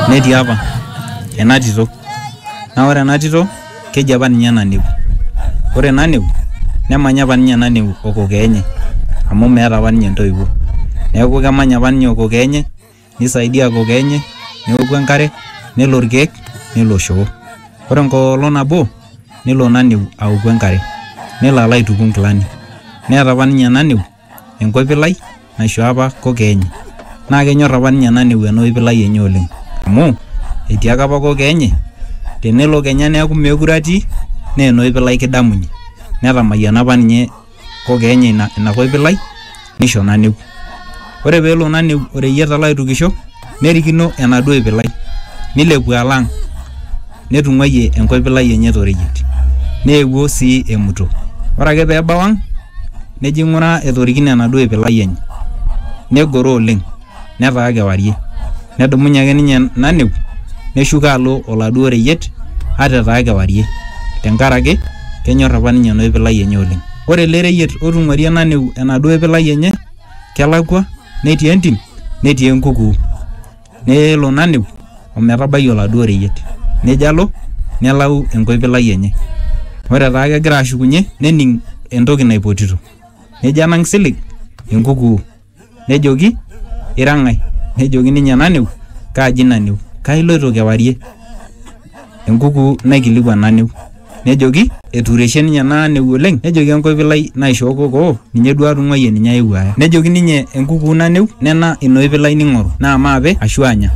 netii apa ena tito naa ore ena tito keji apa ninye naneu ore naneu nemanya apa ninye naneu okokee enye amu meeta apa ninye intoiwuo neeku kemanya apa ninye okokee enye nisaidia kokee enye neoku enkare nelo irkeek nelo shoo ore enkolong nabo nelo naneu aoku enkare nelo alo aituku inkilani neeta apa ninye naneu. enkopilai naishoo apa koko enye naa kenyor apa ninye Nanewu ena opilai enye oleng amu etiaka apa koko enye tenelo kenya neeku meekure atii naa ena opilai kidamunye netamayiana apa ninye koko enye ina kopilai nisho Nanewu ore peelo Nanewu oreyiet alo aitukisho nerikino enaduo opilai nilepu alo ang. netung'uayie enkoipilai enye toreyiet neewuo sii emuto ore ake pee ebau ang nejo aing'uraa etorikine enaduo oipilai enye negoro oleng netaa kewarie nedumunye ake ninye naneu neshuko alo oladuo reyiet ata etaa kewarie tenkaraki kenyorr apa ninye ena oipilai enye oleng ore ele reyiet otung'uarie naneu enaduo oipilai enye kelakua netii entim netii enkukuu. Nelo naneu o metabai oladuo reyiet, nejo alo nelau enkoipilai enye. Ore etaa kegira ashukunye nening entoki naipotito, nejo enang silig enkukuu. Nejoki, Ira ng'ae? Nejoki ninye, Naneu. Kaji naneu? Kaa iloito kewarie? enkuku naikilikuan Naneu. Nejoki, etuureshe ninye naa neu oleng. Nejoki enkoipilai naishoo kokoo, ninye duo atung'uayie ninye aewuo aya. Nejoki ninye enkuku Naneu, nena ina oipilai ning'oru, naa maape ashu anya.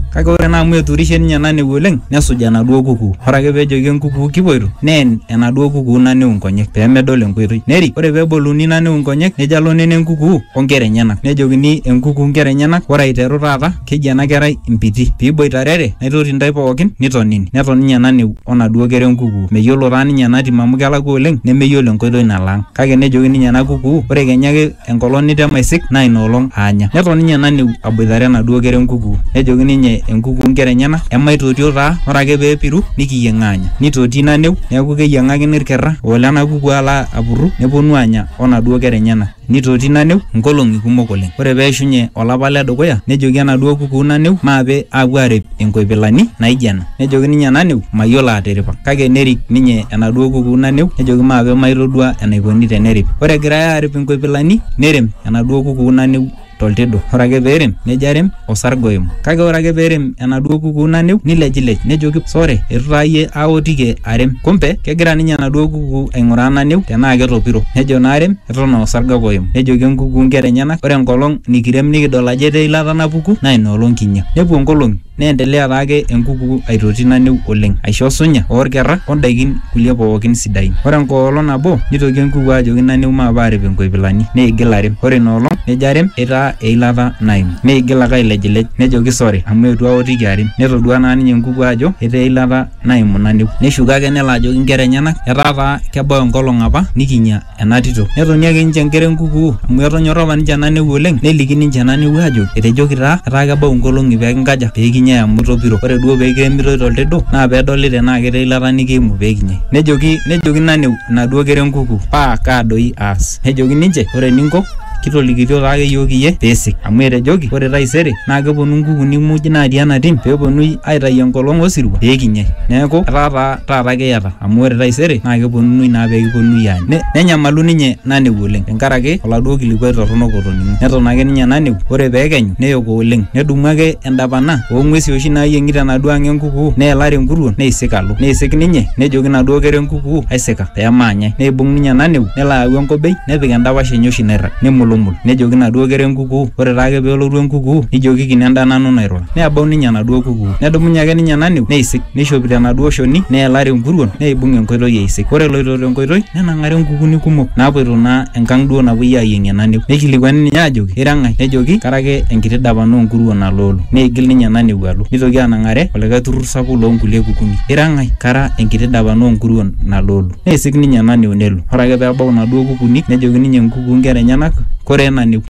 Kake ore naa amu etuurishe ninye Naneu oleng, nesuj enaduo kukuu. Ore ake pee ejoki enkukuu kipuoito, neen enaduo kukuu Naneu inkonyek, pee medol enkoitoi. Nerik, ore pee eboluni Naneu inkonyek, nejo alo nena enkukuu o nkera enyena. Nejokini enkuku inkera enyena, ore aiteru taata, Keji ena kerai Mpiti. Piiboitarere, naitoti ndai pookin, nitonini. Neton ninye naneu o naduo kera e nkukuu. Meyiolo taa ninye ena tim amu kelakua oleng nemeyiolo enkoitoi nalo ang. Kake nejoki ninye ena kukuu, Ore kenya ake enkolong nitema aisik naa ina olong aanya. Neton ninye naneu aboitare enaduo kera e nkukuu. Nejoki ninye e nkukuu nkera enyena, Emaitotio taa, ore ake pee epiru nikiyieng aanya. Neitoti naneu, neaku keyieng'akini ilkerra o lena kukuu alo apurru nepuonu aanya o naduo kera enyena. Neitoti Naneu nkolong'i kumok oleng. Ore pee eishunye olapa le dukuya, nejoki enaduoo kukuu Naneu maape aapuo aarip inkoipilani naaijo ena. Nejoki ninye Naneu, Mayiolo atiripa. Kake nerik ninye enaduoo kukuu Naneu nejoki maape maitodua enaikoni teneripi. Ore egirai aarip inkoipilani, neirem enaduoo kukuu Naneu. toltidu. Ore ake pee erem, nejo arem o sarge oim. Kake ore ake pee erem enaduo kukuu naneu, neilejilej nejoki, 'Sore, eitu taa iyie aotiki arem. Kumbe, kegira ninye enaduo kukuu aing'uraa naneu tenaa ketopiro. Nejo naa arem eton aa osarge ake oim. Nejoki enkukuu inkera enyena, 'Ore enkolong nikirem nikidol ajo etaa eilata napuku, naa ina olong kinya. Nepuo nkolong'i. Neendelea taake enkuku aitoti naniu oleng, aisho osunya o lkerra o ndaiki kulie pooki sidain. Ore enkolong nabo neitoki enkuku ajoki naniu maape aarip nkoipilani. Neigil arem. Ore ina olong nejo arem eitaa eilata naimu. Neigil ake ailejilej nejoki sore amu eitu aotiki arem. Netodua naa ninye enkuku ajo etaa eilata naimu naniu. Neshuko ake nelo ajoki nkera enyena etaa taa kebau enkolong apa nikinya. ena tito. Netoni ake ninche nkera enkukuu amu etonyorra apa ninche ena newuo oleng neliki ninche ena newuo aajo etejoki taa etaa kebau nkolong'i pee kinkaja pee kinyai amu itopiro. Ore duo pee kiremitoi to ltedo naa pee edoli tenaa ketii eilata nikiimu pee kinyai. Nejoki nejoki ina new inaduo kera enkukuu paa kaa doi aas. Nejoki ninche ore eninko kitolikitio taa ake iyiook iyie pee isik amu etejoki ore taisere naa keponu nkukuuni muj naatii ena tim pee eponunui aitayu enkolong osirua pee kinyai. Neeku etaa taa taata kiyata. Amu ore taisere naa kepuonunui naa pee kipuonunui aany. Nenyamalu ninye Naneku oleng tenkaraki oladuo kilikuai torrono otoning'o. Neton ake ninye Naneku, ore pee ekenyu neyoko oleng. Nedumu ake endapana oo ng'uesi oshi naayieng'i tenaduo ang e nkukuu neelare enkuruon neisik alo. Neisik ninye nejoki naduo kera e nkukuu aisika pee maanyai. Neibung ninye Naneku nelo ayau enkobei nepik endapash enye oshi nairrag. Nemulumul nejoki naduo kera e nkukuu ore taake pee elotu e nkukuu nijokiki nenda nanu nairura. Nebau ninye enaduo kukuu. Nedumunye ake ninye Naniu neisik, neishopito enaduo shoni, neelare enkuruon, neibung enkoitoi eisik. Ore eloito te nkoitoi, nenang'are nkukuni kumok naapuoito naa enkang duo napuoi aayieng'ie Naniu. Neikilikuani ninye aajoki, Ira ng'ae? Nejoki, Kara ake enkiti dapan oo nkuruon aloolo. Neigil ninye Naniu alo. Neitoki anang'are olikae turrur sapuk loo nkulie kukuni. Ira ng'ae? Kara enkiti dapan oo nkuruon naloolo. Neisik ninye Naniu nelo. Ore ake pee ebau inaduo kukuni, nejoki ninye nkukuu nkera enyena, Koree Naniu?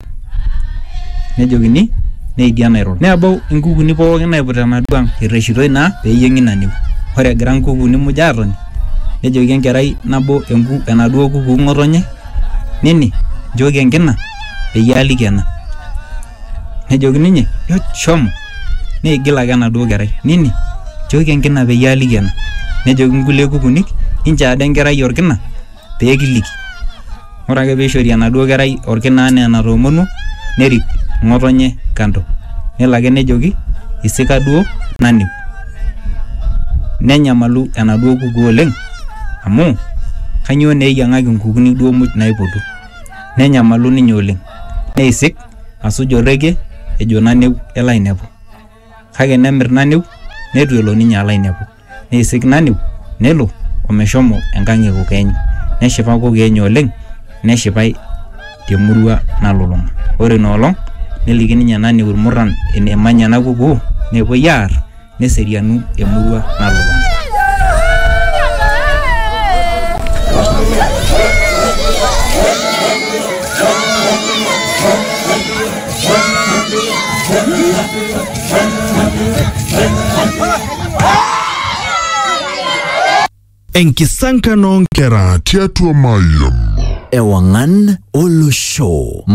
nejokini neidia nairura nebau inkukuni pookin naiput enaduo ang irreshitoi naa peyieng'i ina niu ore egira inkukuni muj atoni nejoki enkerai nabo enku enaduo kukuu ng'otonye nini nchooki enkina peyie aliki ena nejoki ninye "Nyoo, shomo neigil ake enaduo kerai nini nchooki enkina peyie aliki ena nejoki inkulie kukunik inchoo ade enkerai orkina pee kiliki. Ore ake pee eishori enaduo kerai olkina anaa enatoomonuo nerik ng'otonye kando nelo ake nejoki isika duo naning. Nenyamalu enaduo kuku oleng amu kainyoo naa eyiang'aki inkukuni duo muj naipotu. Nenyamalu ninye oleng neisik asuj orrekie ejo naneu elo ainepu kake nemir naneu neitu elo ninye alo ainepu. Neisignaniu nelo omeshomo enkang e kokeenyu. Neshipa kokeenyu oleng neshipai te murua nalulunga. Ore ina olong neliki ninye Nani Ilmurran enemanya ena kukuu nepuoi aar neserianu emurua nalulunga. Enkisankan oo nkera tiatua Mayian. Ewangan Olosho.